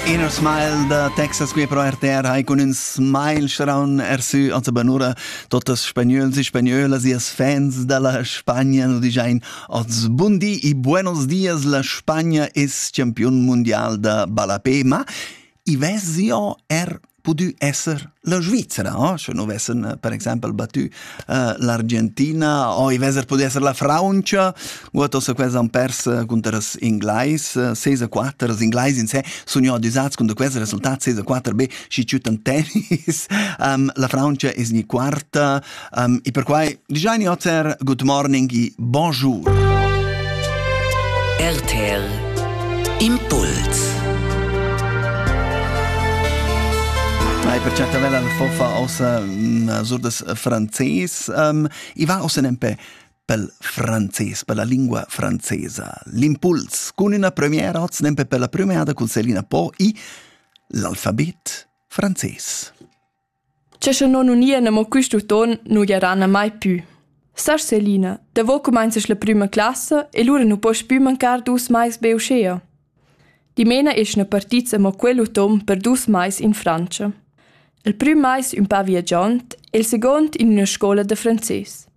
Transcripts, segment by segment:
Inner Smile da Texas qui pro RTR hai cun ün smile schraun ersü ans banura totas spagnols e spagnölas e fans dalla Spagna nu dijain oz bun di e buenos dias la Spagna es champiun mundial da ballapé ma i vesio er pudü esser la Svizzera, eh? sche nu vessen eh, per exempel battü uh, l'Argentina o i veser pudü esser la Francia, guatos quels han pers cunter els Inglais, 6 a 4, els Inglais in sé sun jo adüsats cunter quels resultats 6 a 4, be schi ciutan tennis, um, la Francia es ni quarta, Um, e perquai giaini oter good morning e bonjour. RTL Impuls Mai per certavella la fofa ossa mm, sur des frances um, e va ossa nempe pel frances, per la lingua francesa. L'impuls cun una premiera oz nempe per la premiada con Selina Po e l'alfabet francese. Che sche non unien amo quist uton nu gieran mai pü. Sar Selina, davo cumainzast la prüma classa e lura nu poss pü mancar dus mais be uschea. Dimena eschna partits amo quel uton per dus mais in Frantscha. Il prüm mais ün pa viagiond e il second in üna scoula da frances.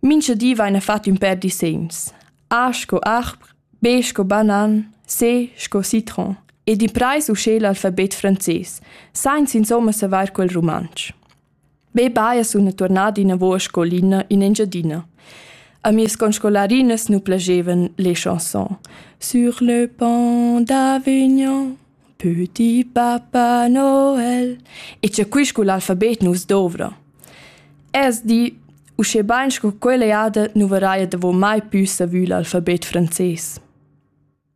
Mincha di vaina fat ün pêr disegns, A sco arb, B sco banan, C sco citron e d'imprais uschè l'alfabet frances, sainza insomma savair quel rumantsch. Be baja suna tuornada inavo a scolina in Engiadina. A mias conscolarinas nu plagevan le chanson Sur le pont d'Avignon Püti Papa Noel. E c'è qui scu l'alfabet nus dovra. Es di, usche bain sco quella jada nu varaia davo mai pü savü l'alfabet frances.